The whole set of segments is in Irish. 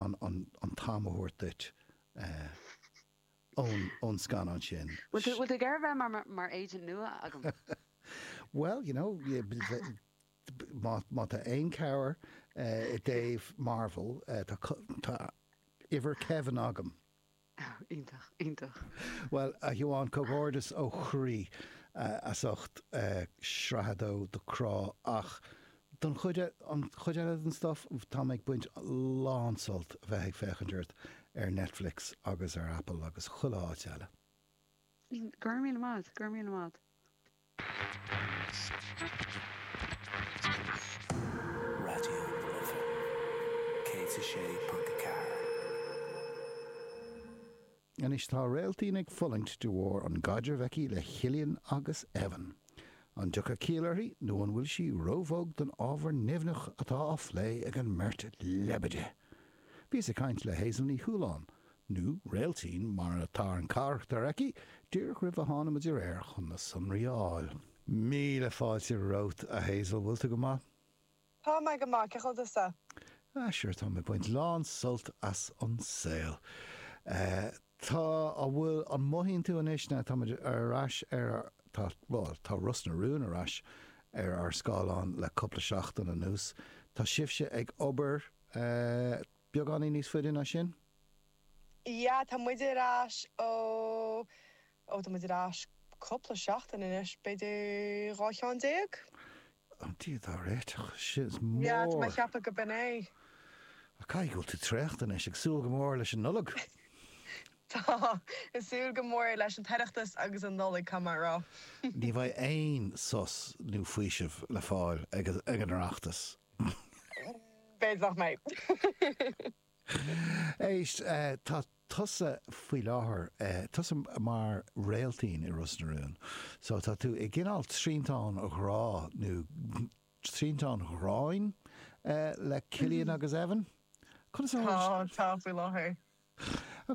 an t-am a thabhairt duit ón scannán sin. Bhfuil tú ag iarraidh bheith mar agent nua agam? Bhuel, you know, má tá aon chabhair i dtaobh Marvel, tá uimhir Kevin agam. Oh, iontach, iontach. Bhuel, a Shiobhán, comhghairdeas ó chroí as ucht sraith a dó de Crá ach don chuid an chuid eile den stuff, táim ag baint lán-sult a bheith ag féachaint ort ar Netflix agus ar Apple agus chuile áit eile. go raibh míle maith agat, go raibh míle maith agat. Raidió na Life 106.4. Anois tá Réiltín ag fulaingt de bharr an gcaidreamh aici le Chillian agus Evan. An dtiocfaidh ciall uirthi nó an bhfuil sí róbhog don ábhar nimhneach atá á phlé ag an mbeirt leibide? Bhíos ag caint le Hazel Ní Chualáin nó Réiltín mar atá ar an carachtar aici, díreach roimh a tháinimid ar aer chun na sonraí a fháil. Míle fáilte romhat, a Hazel, bhfuil tú go maith? Tá mé go maith, cén chaoi a bhfuil tusa? Ah sure, táim ag baint lán sult as an saol. Tá, an bhfuil, an mothaíonn tú anois now táimid ar ais ar ár, tá, bhuel, tá Ros na Rún ar ais ar ár scáileáin le cúpla seachtain anuas, tá sibhse ag obair eh, Beagáinín níos faide ná sin? Yeah, tá muid ar ais ó, ó tá muid ar ais cúpla seachtain anois, b'fhéidir dhá cheann déag? Yeah. Ó Dia dár réiteach, sin a lán! Yeah, tá mé a cheapadh go b'in é. Ach caithfidh go bhfuil tú traochta anois, ag súil go mór leis an Nollaig! Tá, ag súil go mór leis an tOireachtas agus an Nollaig, caithfidh mé a rá. Ní bheidh aon sos nó faoiseamh le fáil ag an Oireachtas B'fhéidir nach mbeidh. Éist, tá tusa faoi láthair, tusa mar Réiltín i Ros na Rún. So tá tú i gcineál triantán ghrá, nó triantán ghráin le Cillian agus Evan? Conas a tharla? Tá, tá faoi láthair.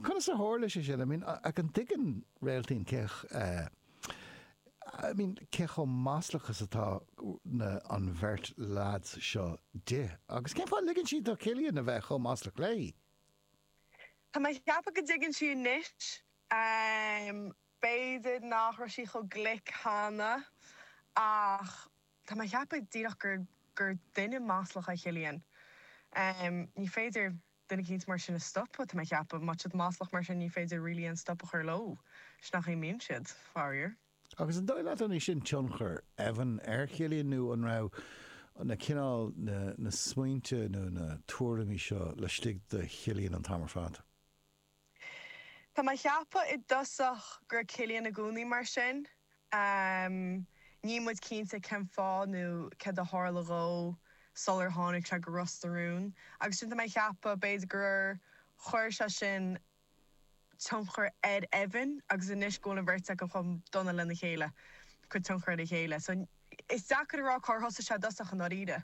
Conas a tharla sé sin? I mean, an dtuigeann Réiltín cé I mean, cé chomh maslach is atá na an bheirt lads seo di? Agus cén fáth a ligeann sí do Chillian a bheith chomh maslach léi? Tá mé a cheapadh go dtuigeann sí anois. Ehm, b'fhéidir nach raibh sí chomh glic cheana, ach tá mé a cheapadh díreach gur gur duine maslach é Chillian. Ehm, ní féidir duine eicínt mar sin a stopadh, tá mé a cheapadh. Má tá siad maslach mar sin ní féidir really aon stop a chur leo. Sin nach é a mbíonn siad, faraor. Agus an dóigh leat an é sin tionchar Evan ar Chillian nó an raibh na cineál, na, na smaointe nó na tuairimí seo laistigh de Chillian an t-am ar fad? Tá mé a cheapadh i dtosach go raibh Cillian i gcónaí mar sin. Níl muid cinnte cén fáth nó céard a tharla dhó sular tháinig sé go Ros na Rún agus sin tá mé a cheapadh b'fhéidir gur chuir sé sin tionchar ar Evan agus anois go bhfuil an bheirt acu chomh dona lena chéile, cuid tionchar ar a chéile. So, is deacair a rá cár thosaigh sé i dtosach i ndáiríre.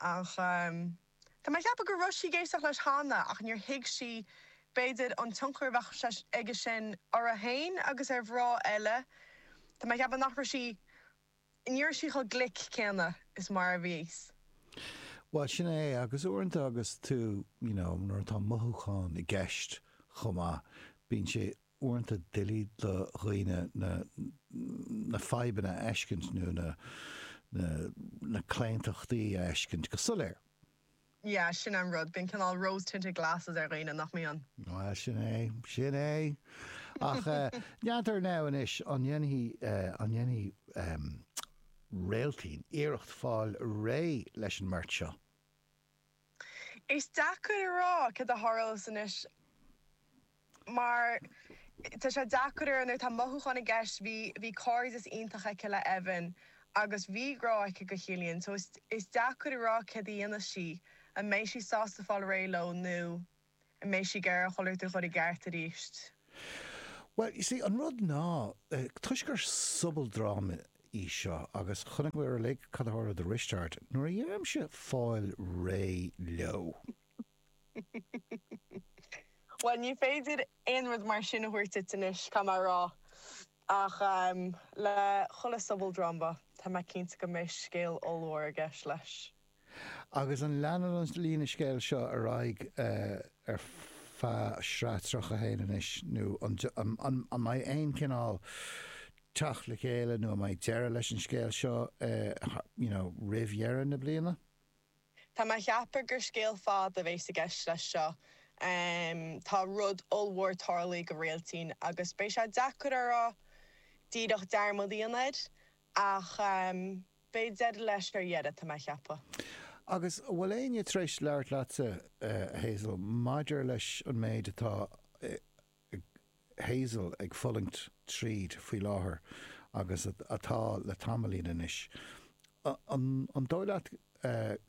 Ach tá mé ag ceapadh go raibh sí ag éisteacht leis cheana ach níor thuig sí, b'fhéidir, an tionchar a bheadh aige sin orthu féin agus ar mhná eile. Tá mé ag ceapadh nach raibh sí, ní raibh sí chomh glic céanna is mar a bhí Eve. Bhuel, sin é é. Agus uaireanta agus tú, you know, nuair atá mothúcháin i gceist chomh maith, bíonn sé uaireanta doiligh do dhaoine na fadhbanna a fheiscint nó na claontachtaí a fheiscint go soiléir. Yeah, sin an rud, bíonn cineál rose tinted glasses ar dhaoine, nach mbíonn? Well, sin é, sin é. Ach Réiltín now anois, an ndéan- an ndéanfaidh Réiltín iarracht fáil réidh leis an mbeirt seo? Is deacair a rá céard a tharlós anois mar tá sé deacair ar nuair tá mothúcháin i gceist. Bhí bhí cairdeas iontach aici le Evan agus bhí grá aici do Chillian so is is deacair a rá céard a dhéanfas sí, an mbeidh sí sásta fáil réidh leo nó. an mbeidh sí ag iarraidh chuile shórt a chur i gceart arís? Bhuel, you see, an rud ná, toisc gur sobaldráma í seo, agus chonaic muid uilig cad a tharla do Risteárd nuair a dhéanaimse fáil réidh leo. Bhuel, ní féidir aon rud mar sin a thabhairt duit anois, caithfidh mé a rá, ach le chuile sobaldráma, tá mé cinnte go mbeidh scéal ollmhór i gceist leis. Agus an leanann an líne scéil seo ar aghaidh ar feadh sraith 31 anois, nó an mbeidh aon chineál teacht le chéile nó an mbeidh deireadh leis an scéal seo roimh dheireadh na bliana? Tá mé a cheapadh gur scéal fada a bheas i gceist leis seo. Tá rud ollmhór tarlaithe do Réiltín agus beidh sé deacair uirthi díreach dearmad í an fhad Ach beidh deireadh leis ar dheireadh, tá mé a cheapadh. Agus an bhfuil éinne tar éis labhairt leatsa, a Hazel, maidir leis an méid atá ag Hazel ag fulaingt tríd faoi láthair agus atá le tamaillín anois. An dóigh leat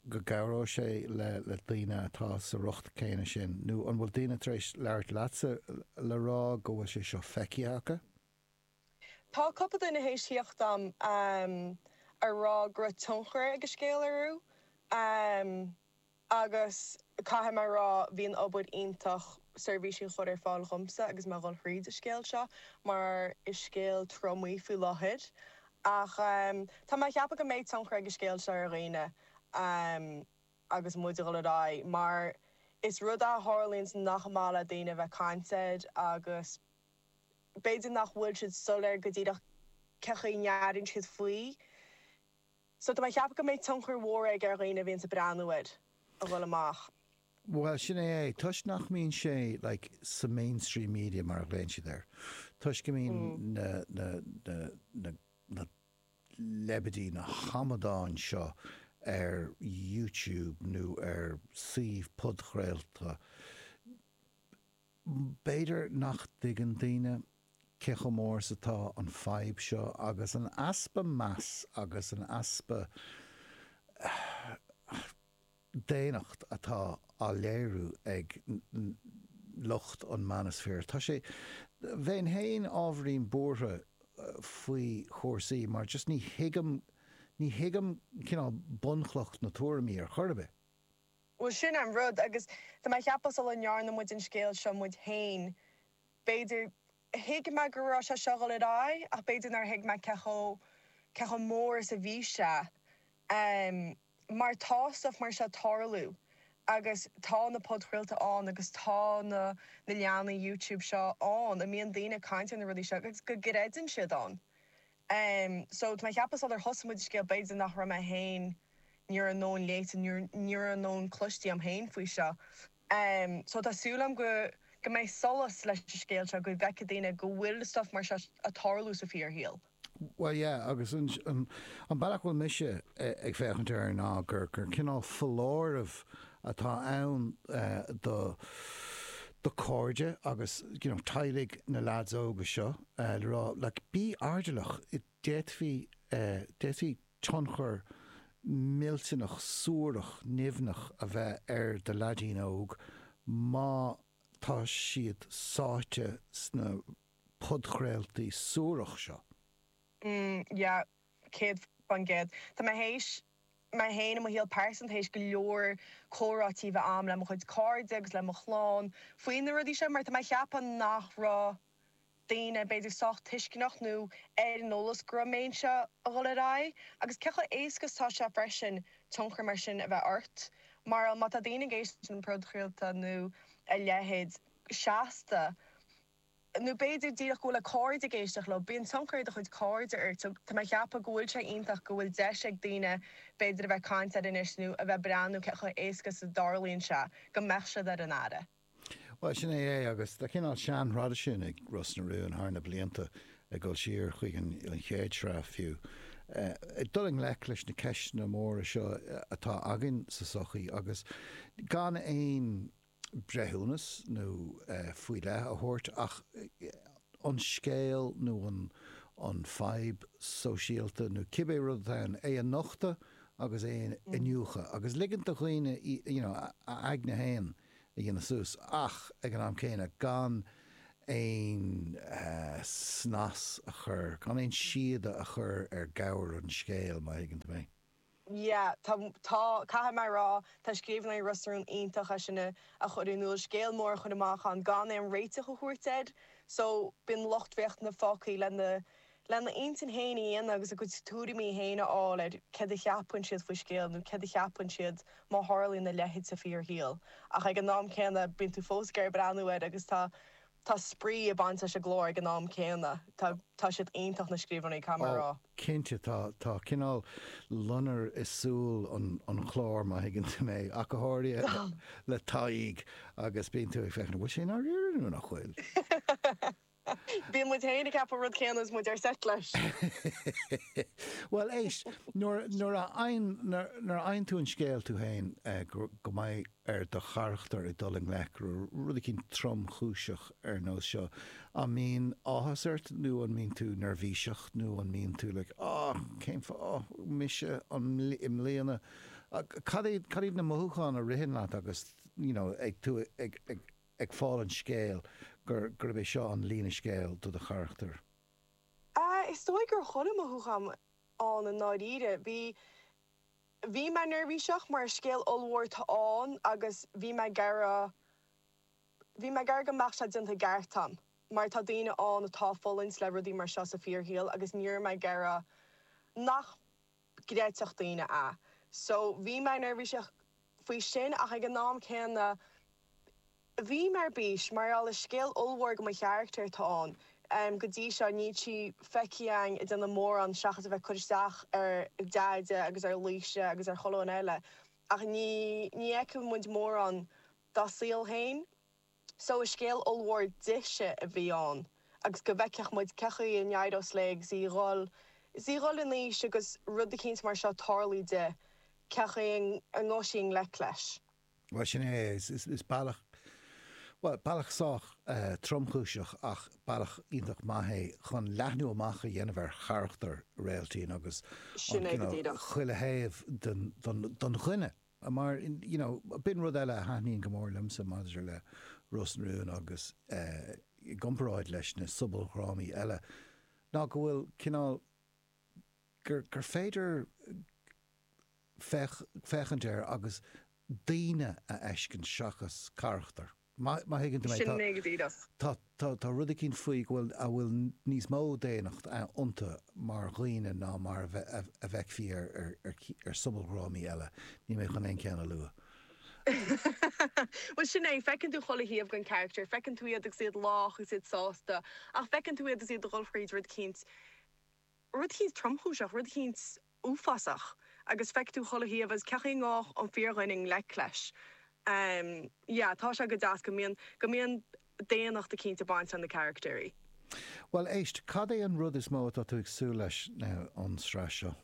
go gcabhróidh sé le daoine atá sa riocht céanna sin nó an bhfuil daoine tar éis labhairt leatsa le rá go bhfuil sé seo feicthe acu? Tá cúpla duine théis thíocht a'm a rá go raibh tionchar ag an scéal orthu agus caithfidh mé a rá bíonn obair iontach seirbhísí a chur ar fáil dhomsa agus mé a dhul thríd an scéal seo mar is scéal trom é faoi láthair ach tá mé a cheapadh go mbeidh tionchar ag an scéal seo ar dhaoine agus muid a dhul ar aghaidh mar is rud a tharlaíonns nach maith le daoine a bheith caint air agus b'fhéidir nach bhfuil siad soiléir go díreach cé chaoi ndéanann siad faoi so tá mé ag ceapadh go mbeidh tionchar mór aige ar dhaoine a bhíonns ag breathnú air a dhul amach. Bhuel, sin é é. Toisc nach mbíonn sé like sa mainstream media mar a ghlaonn siad air, toisc go mbíonn na, na, na, na, na leibidí, na hamadáin seo ar YouTube nó ar suímh podchraolta, B'fhéidir nach dtuigeann daoine cé chomh mór is atá an fadhb seo agus an easpa meas agus an easpa daonnacht atá á léiriú ag lucht an manosphere. Tá sé, bheinn féin ábhairín buartha faoi chúrsaí mar just ní thuigim, ní thuigim cineál bunchloch na tuairimí ar chor ar bith. Bhuel sin an rud agus tá mé a cheapadh sula ndearna muid an scéal seo muid féin, b'fhéidir, thuig mé go raibh sé seo ag goil ar aghaidh ach b'fhéidir nár thuig mé cé chomh, cé chomh mór is a bhí sé. Mar tá stuff mar seo ag tarlú agus tá na podchraolta ann agus tá na, na leathanaigh YouTube seo ann is bíonn daoine ag caint ar na rudaí seo agus go gcreideann siad ann. Em so tá mé a cheapadh sular thosaigh muid an scéal b'fhéidir nach raibh mé féin ní raibh a'n lán léite nó ní raibh a'n lán cloiste a'm féin faoi seo. Em so tá súil a'm go go mbeidh solas leis an scéal seo go bhfeicfidh daoine go bhfuil stuff mar seo a' tarlú sa fíor shaol. Bhuel yeah agus an an an bealach a bhfuil mise ag féachaint air ná gur gur cineál foláireamh atá ann eh do do cairde agus you know teaghlaigh na leaids óga seo, le rá, like, bí airdeallach, d'fhéadfaí, d'fhéadfaí tionchar millteanach suarach nimhneach a bheith ar do leaidín óg má tá siad sáite sna podchraoltaí suaracha seo. Mm, yeah, céad faoin gcéad. Tá mé théis, mé féin i mo shaol pearsanta, théis go leor comhráití a bheith a'm le mo chuid cairde agus le mo chlann faoi na rudaí seo mar tá mé a cheapadh nach raibh, daoine b'fhéidir sách tuisceanach nó ar an eolas go raibh sé seo ag dul ar aghaidh agus cé chomh éasca is atá sé freisin tionchar mar sin a bheith ort mar má tá daoine ag éisteacht le podchraoltaí nó a leithéid seasta nó b'fhéidir díreach go bhfuil a gcairde ag éisteacht leo bíonn tionchar ag do chuid cairde ort so tá mé ag ceapadh go bhfuil sé iontach go bhfuil deis ag daoine b'fhéidir a bheith caint air anois nó a bheith breathnú cé chomh éasca is a tharlaíonn sé go mbeadh siad ar an aire. Bhuel, sin é é agus tá cineál seanthraidisiún ag Ros na Rún thar na blianta ag dul siar chuig an chéad sraith fiú, ag dul i ngleic leis na ceisteanna móra seo atá againn sa sochaí agus gan aon breithiúnas nó faoi leith a thabhairt ach an scéal nó an fadhb sóisialta nó cibé rud atá ann, é a nochtadh agus é a iniúchadh agus ligint do dhaoine, you know, a n-aigne féin. a dhéanamh suas ach ag an am céanna gan aon snas a chur, gan aon síoda a chur ar ghabhar an scéil, má thuigeann tú mé. Yeah, tá, tá, caithfidh mé a rá, tá scríbhneoirí Ros na Rún iontach ag é sin a chur in iúl, scéal mór a chur amach ann gan aon réiteach a thabhairt air. So, bíonn lucht féachana fágthaí lena lena n-intinn féin a dhéanamh agus a gcuid tuairimí féin a fháil ar céard a cheapann siad faoi scéal nó céard a cheapann siad má tharlaíonn a leithéid sa fíor-shaol ach ag an am céanna bíonn tú fós ag breathnú air agus tá tá spraoi ag baint leis an gclár ag an am céanna. Tá tá siad iontach na scríbhneoirí caithfidh mé a rá. Cinnte tá. Tá cineál loinnir i súil an an chláir má thuigeann tú mé, ach go háirithe le Tadhg agus bíonn tú ag féachaint, bhfuil sé i ndáiríre nó nach bhfuil? Bíonn muid féin ag ceapadh rud céanna is muid ar seit leis. Bhuel éist, nuair a fhaigheann tú an scéal tú féin go mbeidh ar do charachtar ag dul i ngleic le rud eicínt tromchúiseach ar nós seo, an mbíonn áthas ort nó an mbíonn tú neirbhíseach nó an mbíonn tú like ah cén fáth, ah mise, an i mbliana, cad iad na mothúcháin a ritheann leat agus you know ag tú ag ag fáil an scéal, gurb é seo an líne scéal do do charachtar? Ah, is dóigh go raibh chuile mhothúchán ann i ndáiríre. Bhí, bhí mé neirbhíseach mar is scéal ollmhór atá ann agus bhí mé ag iarraidh, bhí mé ag iarraidh go mbeadh sé déanta i gceart a'm mar tá daoine ann atá ag fulaingt le rudaí mar seo sa fíorshaol agus ní raibh mé ag iarraidh nach, gcreidfeadh daoine é. So bhí mé neirbhíseach faoi sin ach ag an am céanna bhí mé ar bís mar gheall is scéal ollmhór do mo charachtar atá ann. Go dtí seo níl sí feicthe againn ag déanamh mórán seachas a bheith ag cur isteach ar Deaide agus ar Laoise agus ar chuile dhuine eile ach ní fheicfidh muid mórán dá saol féin. So is scéal ollmhór di-se a bhí ann agus go bhfeicfeadh muid cén chaoi a n-éireoidh léi is í ag dhul, is í ag dhul in aois agus rud eicínt mar seo tarlú di, cén chaoi a ngabhfaidh sí i ngleic leis. Bhuel, sin é, is bealach, bhuel, bealach sách tromchúiseach ach bealach iontach maith é chun leathnú amach a dhéanamh ar charachtar Réailtín agus, you know, chuile thaobh den duine. Mar, you know, b'in rud eile a thaitníonn go mór liomsa maidir le Ros na Rún agus i gcomparáid leis na sobaldhrámaí eile ná go bhfuil cineál, gur, gur féidir féach, féachaint air agus daoine a fheiscint seachas carachtair. Má thuigeann tú mé, tá, tá, tá, tá rud eicínt faoi go bhfuil, a bhfuil níos mó daonnacht iontu mar dhaoine ná mar a bhfeicfí ar, ar, ar, ar sobaldhrámaí eile. Níl mé chun aon cheann a lua. Bhuel, sin é, feiceann tú chuile thaobh den charachtar, feiceann tú iad agus iad lách agus iad sásta, ach feiceann tú iad agus iad ag dhul thríd rud eicínt, Rud eicínt tromchúiseach, rud eicínt uafásach agus feicfidh tú chuile thaobh agus cén chaoi a ngabhfadh an fíordhuine i ngleic leis. Yeah, tá sé go deas go mbíonn, go mbíonn daonnacht eicínt ag baint le na carachtair. Bhuel, éist, cad é an rud is mó atá tú ag súil leis now ón sraith seo?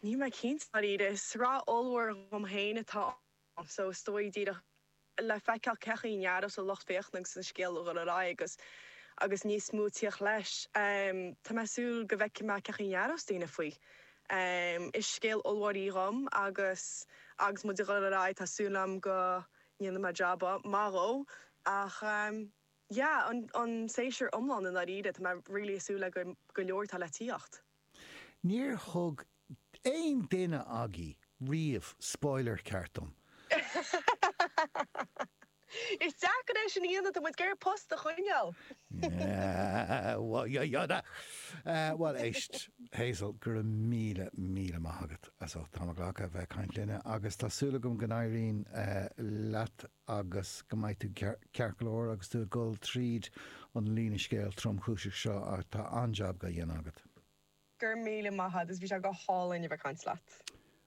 Níl mé cinnte, i ndáiríre. Is sraith ollmhór dhom féin atá so is dóigh díreach le feiceáil cén chaoi a n-aireos an lucht féachana agus an scéal ag dhul ar aghaidh agus agus níos mó ag tíocht leis. Tá mé ag súil go bhfeicfidh mé cén chaoi a n-aireos daoine faoi. Is scéal ollmhór í dhom agus agus muid ag dhul ar aghaidh tá súil agam go ndéanfaidh mé job maith dhó ach. yeah an an séasúr iomlán i ndáiríre tá mé really ag súil le go go leor atá le tíocht. Níor thug aon duine agaibh riamh spoiler ceart dom! Is deacair é sin a dhéanamh, tá muid ag iarraidh post a choinneáil! Bhuel éist, Hazel, go raibh míle, míle maith agat as ucht t'am a ghlacadh a bheith ag caint linne agus tá súil agam go n-éiríonn leat agus go mbeidh tú ceart go leor agus tú ag dul tríd an líne scéil tromchúiseach seo ach tá an-jab dhá dhéanamh agat. Go raibh míle maith agus bhí sé go hálainn a bheith caint leat.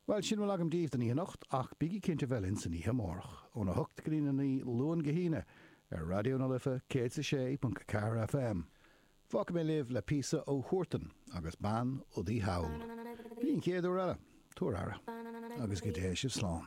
Bhuel, sin a bhfuil agam daoibh don oíche anocht ach bígí cinnte a bheith linn san oíche amárach, óna hocht go dtí na naoi, Luan go hAoine, ar Raidió na Life 106.4 FM. Fágfaidh mé libh le píosa ó Huartan agus Bean Udaí Thall. Go dtí an chéad uair eile, tabhair aire agus go dté sibh slán.